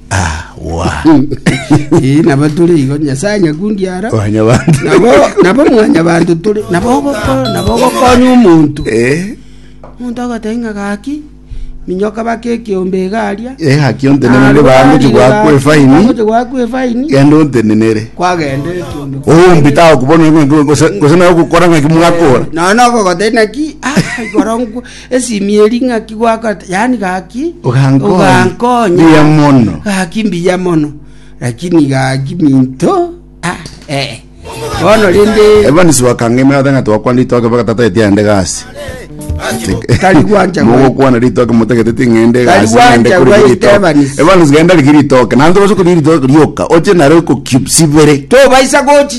Awa. Eh, nabo tore igo nyasaye nyakundi ara Wanya bantu. nabo nabo mwanya bantu tore nabo ogoko- nabo ogokonya omonto Eh, omonto agotebi ng'a gaki minyoka bake ekeombe egaria eh, haki ontenenere bangochi gwakwa efaini. gwakwa efaini Genda ontenenere. kwagenda ekeombe Oombi tago kubona ng'a gose gose nawe gukora ng'a kimwakora. nono ogogotebi naki ah, igoro nkwa Esimi eri ng'aki gwakora, yaani gaki Ogankonya. ogankonya. Mbuya mono. Gaki mbuya mono. Lakini gaki minto, ah, eh. Bono rende Evans wakang'aima ata ng'a twakwana ritoke mpaka tata etia ende gasi. Tari gwanja gwa- Mogokwana ritoke motagete ting'ende Tari gasi gwanja ng'ende kuri gwaita ritoke. Evans. Evans genda riki ritoke. Nanto base kuri ritoke rioka. Oche naro ko cubes ibere. tobaisa gochi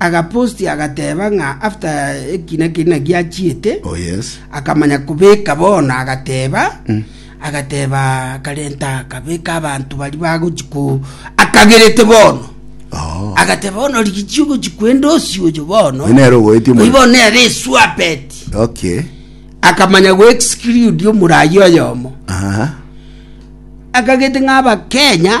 Agaposti agateba ng'a after ekina keria naki achiete, akamanya kobeka bono, agateba agateba akarenta akabeka abanto baria bagochi ko akagerete bono agateba bono rigichi ogochi kwenda osi oyo bono Oyo nere ogoeti omoyo. oyo bono nere esuapeti okay akamanya goexclude omorayi oyomo Aha. akagete ng'a abakenya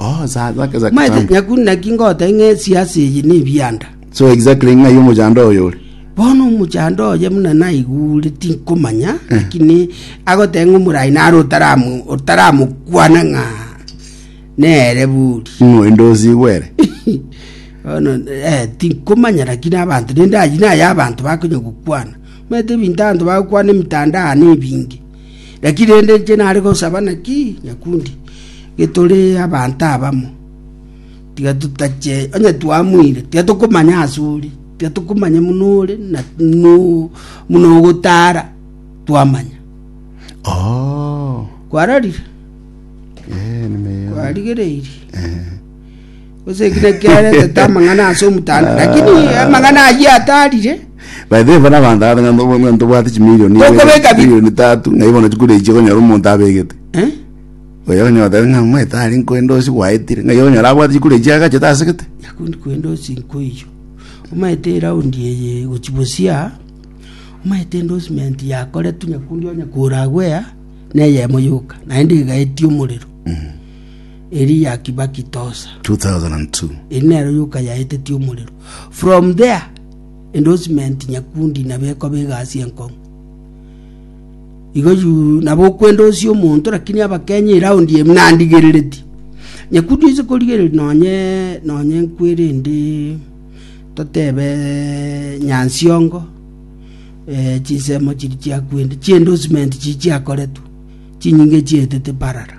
Oh, za- zake za Maete kitambo. nyaku naki ngote ng'a esiasi eye nebianda. So exactly ng'ai omochando oyo ore. Bono omochando oye muna naigure tinkomanya lakini agote ng'a omorai nare otaramu- otaramokwana ng'a nere buri Ng'oi ndosi gwere. bono eh, tinkomanya lakini abanto rende aywo naye abanto bakonya gokwana maete ebinto abanto bagokwana emitandao nebinge Naki rende inche nare gosaba naki, nyakundi? Getore abanto abamo, tiga totache onye twamwire, tiga tokomanya ase ore, tiga tokomanya muno ore na muno ogotara twamanya. Oh. Kwarorire? Eh, nime. Kwarigereirie? Eh. Gose eki nakio aretete amang'ana ase omotanda, lakini amang'ana ayio atarire. By the way bono abanto abe ng'a nobo- ng'a ntobwate chimilioni Tokobeka bi- milioni tatu ng'ai bono chikoreiche konyora omonto abegete Eh? oyo onye otabe ng'a omanyete are nkoendosi gwaetire ng'ai okonyora abwate chikoreiche agachete ase gete nakundi kwenda osinko iyo omanyete eraundi eye gochi bosia omanyete endorsement yakoretwe nyakundi onye kora gwea neyemo yoka naende egaetie omorero Eliaki Bakitosa. 2002. Eri nero yoka yaetetie omorero. From there, endorsement nyakundi nabo ekoba egasi enkong'u. Igo yu nabo okwendosia omonto lakini abakenya iraundi eye nandigerereti. Nyakundi oise korigereria nonye nonye nkwerende totebe Nyansiongo eh, chinsemo chiri chiakwende, chiendorsement chiri chiakoretwe, chinyinge chietete parara.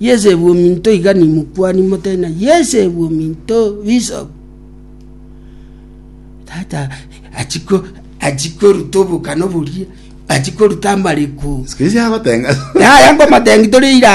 Yesebwe ominto iga nimokuani mote, na yesebwe ominto bisobu. Tata achia koruta obokana oboria, achia koruta amareko. Sikiri siagoteng'a. Yaya ngomotengi tore irano.